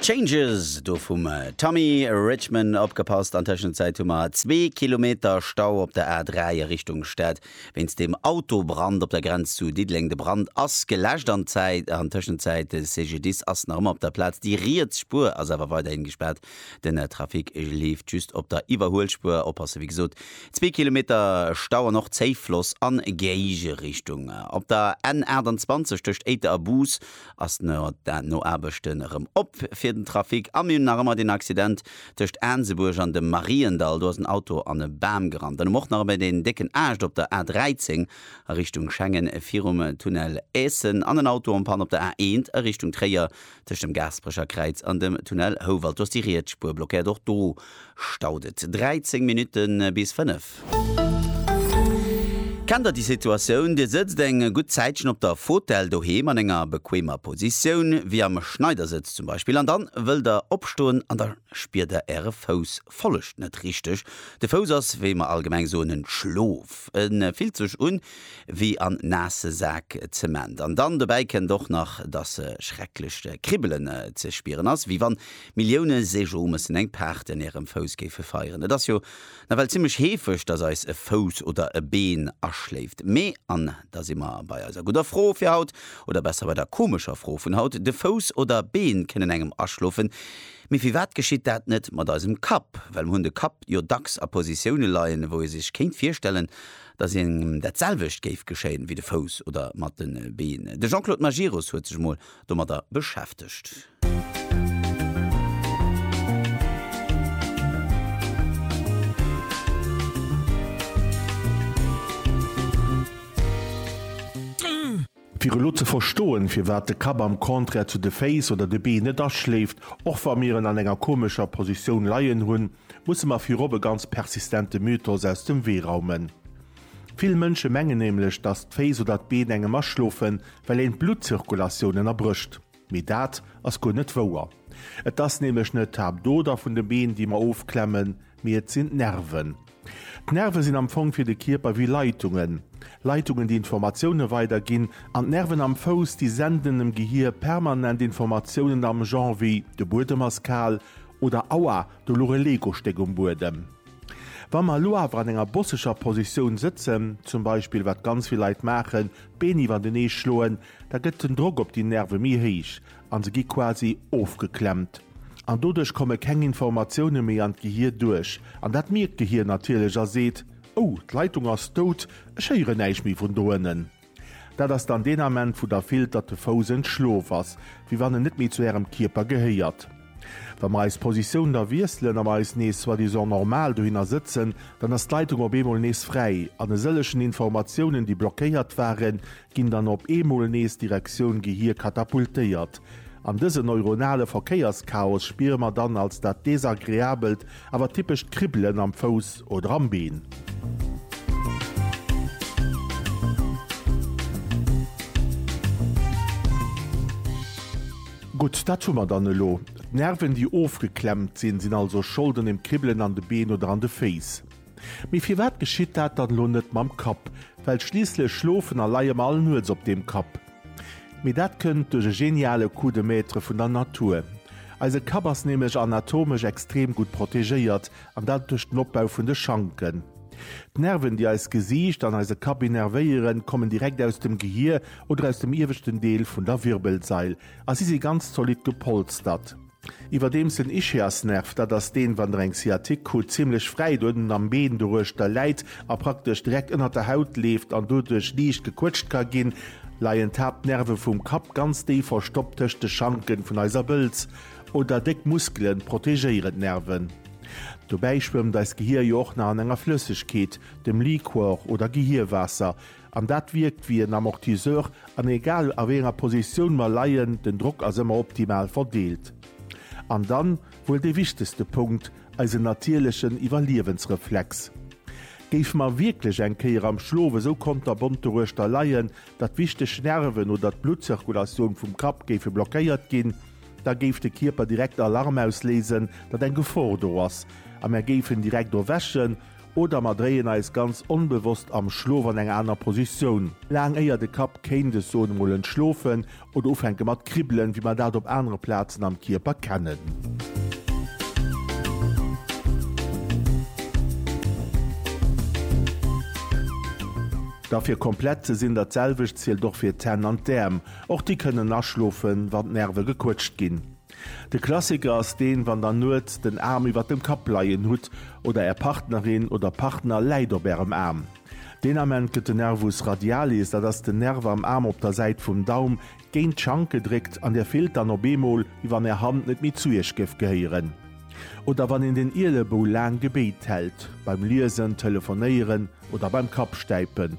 Changes do vum Tommy Richman. Opgepasst, an Tëschenzäit hu mer zwee Kilometer Stau op der A3 a Richtung Stad wéinst dem Autobrand op der Grenz zu Diddeleng. De Brand ass geläscht an an Tëschenzäit de CGDIS ass nach ëmmer op der Plaz. Déi riets Spuer ass awer weiderhin gespaart, den Trafic leeft just op der Iwwerhuelspuer. Oppasse wéi gesot, zwee Kilometer Stau an och Zéiffloss an Géigerichtung op der N 28 tëscht Éiter a Bus. ass no den Noaarbechten erëm op fir den Trafic a mir hunn nach ëmmer deen Accident tëscht Aansebuerg an dem Mariendall. Do ass en Auto an e Bam gerannt. Dann um och nach ëmmer deen décken Aascht op der A13 a Richtung Schengen virum Tunnel Eessen an en Auto en Panne op der A1 a Richtung Tréier tëscht dem Gaasperecher Kräiz an dem Tunnel Houwald. Do ass déi riets Spuer blockéiert. Och do Staut et 13 Minutten bis 5. Kennt der déi Situatioun? Dir sëtzt eng gutt Zäitchen op der Fotell doheem an enger bequemer Positioun, wéi am Schneidersëtz zum Beispill, an dann wëllt der opstoen an da spiert der äre Fouss follegt net richteg. De Fouss ass, wéi mer allgemeng soen, en Schlof. E fillt sech un wéi en naasse Sak Zement. An dann dobäi kënnt och nach, dass e schrecklech Kribbelen ze spieren ass, wéi wann Millioune Sejo mëssen eng Paart en ärem Fouss géife feieren. Et ass jo nawell zimmlech heefeg, dass eis e Fouss oder e Been aschléift. Mee, an da si mer bei eiser gudder Fro fir haut, oder besser bei der komescher Fro vun haut, de Fouss oder Been kënnen engem aschlofen, mee firwat geschitt dat net mat eisem Kapp? Well mer hunn de Kapp jo dacks a Positioune leien, wou ee sech kéint virstellen, dass engem dat selwecht géif geschéien wéi de Fouss oder mat de Been. De Jean-Claude Majerus huet sech emol domadder beschäftegt. Fir elo ze verstoen, firwat de Kapp am Contraire zu de Féiss oder de Been net aschléift, och wa mir en an enger komescher Positioun leien hunn, musse mer virop e ganz persistente Mythos aus dem Wee raumen. Vill Mënsche mengen nämlech, datt d'Féiss oder d'Been engem aschlofen, well een d'Bluttzirkulatioun ënnerbrécht. Mee dat ass guer net wouer. Et ass nämlech net d'Haaptoder vun de Been, déi mer ofklemmen, mee et sinn d'Nerven. D'Nerve sinn am Fong fir de Kierper wéi Leitungen. Leitungen, déi Informatioune weiderginn an d'Nerven am Fouss, déi senden dem Gehier permanent Informatiounen am Genre wéi, de Buedem ass kal oder, Aua, do luch e Legostéck um Buedem. Wa mer elo awer an enger bosseger Positioun sëtzen, zum Beispill, wat ganz vill Leit maachen, d'Been iwwertenee schloen, da gëtt den Drock op déi Nerve méi héich a se gi quasi ofgeklemmt. An doduerch komme keng Informatioune méi an d'Gehir duerch. An dat mierkt d'Gehir natierlech a seet, Ou, d'Leitung ass dout, ech héieren näischt méi vun do ënnen. Dat ass dann deen Ament wou da fillt, datt de Fouss en Schloof ass, wéi wann en net méi zu Ärem Kierper gehéiert. Wa mer eis Positioun da wiesselen a mer eis nees soi-disant normal dohinner sëtzen, dann ass d'Leitung op eemol nees fräi an e sëllegen Informatiounen, déi blockéiert waren, ginn dann op eemol nees Direktioun Gehir katapultéiert. An dëse neuronale Verkéierschaos spiere mer dann als dat Desagreabelt Awer d'typescht Kribbelen am Fouss oder am Been. Gutt, dat hu mer dann elo. D'Nerven, déi ofgeklemmt sinn, sinn also Schold un dem Kribbelen an de Been oder an de Féiss. Mee firwat geschitt dat dann elo net mam Kapp? Well schliisslech schlofen a leie mer all Nuets op deem Kapp. Mee dat kënnt duerch e geniale Coup de Maître vun der Natur. Eise Kapp ass nämlech anatomesch extrem gutt protegéiert, an dat duerch den Opbau vun de Schanken. D'Nerven, déi eist Gesiicht an eise Kapp innervéieren, kommen direkt aus dem Gehier oder aus dem ieweschten Deel vun der Wirbelsail a si si ganz zolidd gepolstert. Iwwerdeems den Ischiasnerv, dat ass deen, wann der eng Sciatique krut, zimmlech fräit uerten am Been doruechter läit a praktesch direkt ënnert der Haut leeft an doduerch liicht gequëtscht ka ginn, leien d'Haaptnerve vum Kapp ganz déif verstoppt tëscht de Schanken vun eiser Bëlz. Oder déck Muskelen protegéieren d'Nerven. Dobäi schwëmmt eist Gehier jo och nach an enger Flëssegkeet, dem Liquor oder Gehierwaasser. An dat wierkt wéi en Amortisseur, an egal a wéi enger Positioun mer leien, den Drock ass ëmmer optimal verdeelt. An dann wuel dee wichtegste Punkt, eisen natierlechen Iwwerliewensreflex. Géife mer wierklech eng Kéier am Schlof esou konterbont doruechter leien, datt wichteg Nerven oder d'Bluttzirkulatioun vum Kapp géife blockéiert ginn, da géif de Kierper direkt Alarm ausléisen, datt eng Gefor do ass a mer géifen direkt erwächen Oder mer dréien eis ganz onbewosst am Schlof an eng aner Positioun, laang éier de Kapp kéint, ech soen emol, entschlofen oder ufänke mat kribbelen, wéi mer dat op anere Plazen am Kierper kennen. Da fir komplett ze sinn, dat selwecht zielt och fir d'Hänn an d'Äerm, och déi kënnen aschlofen, wann d'Nerve gequëtscht ginn. De Klassiker ass deen, wann der nuets den Aarm iwwert dem Kapp leien hutt oder är Partnerin oder Partner läit op ärem Aarm. Deen Ament gëtt de Nervus radialis, dat ass den Nerv am Aarm op der Säit vum Daum, géint d'Schank gedréckt an dir fillt dann op eemol, wéi wann är Hand net méi zu iech géif gehéieren. Oder wann een den Ielebou laang gebéit hält, beim Liesen, Telefonéieren oder beim Kappstäipen.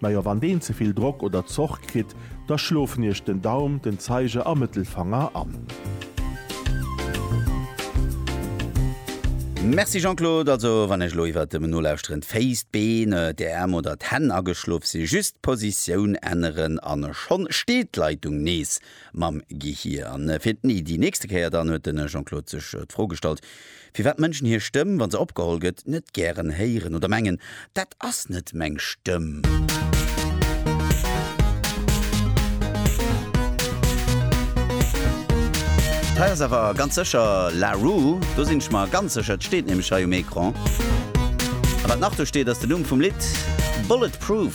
Najo, wann deen ze vill Drock oder Zoch kritt, da schlofen iech den Daum, den Zeiger a Mëttelfanger an. Merci Jean-Claude, also wann ech elo iwwert dem Nolauschteren d'Féiss, d'Been, d'Äerm oder d'Hänn ageschlof sinn, just d'Positioun änneren an schonn steet d'Leitung nees mam Gehir. An fir d'Ni, déi nächste Kéier dann, huet de Jean-Claude sech d'Fro gestallt, firwat Mënschen hir Stëmm, wa se opgeholl gëtt, net gären héieren oder mengen, Dat ass net meng Stëmm. Hei ass awer ganz sécher La Roux. Do sinn ech mer ganz sécher, et steet nämlech hei um Ecran. A wat nach do steet, ass den Numm vum Lidd, Bulletproof.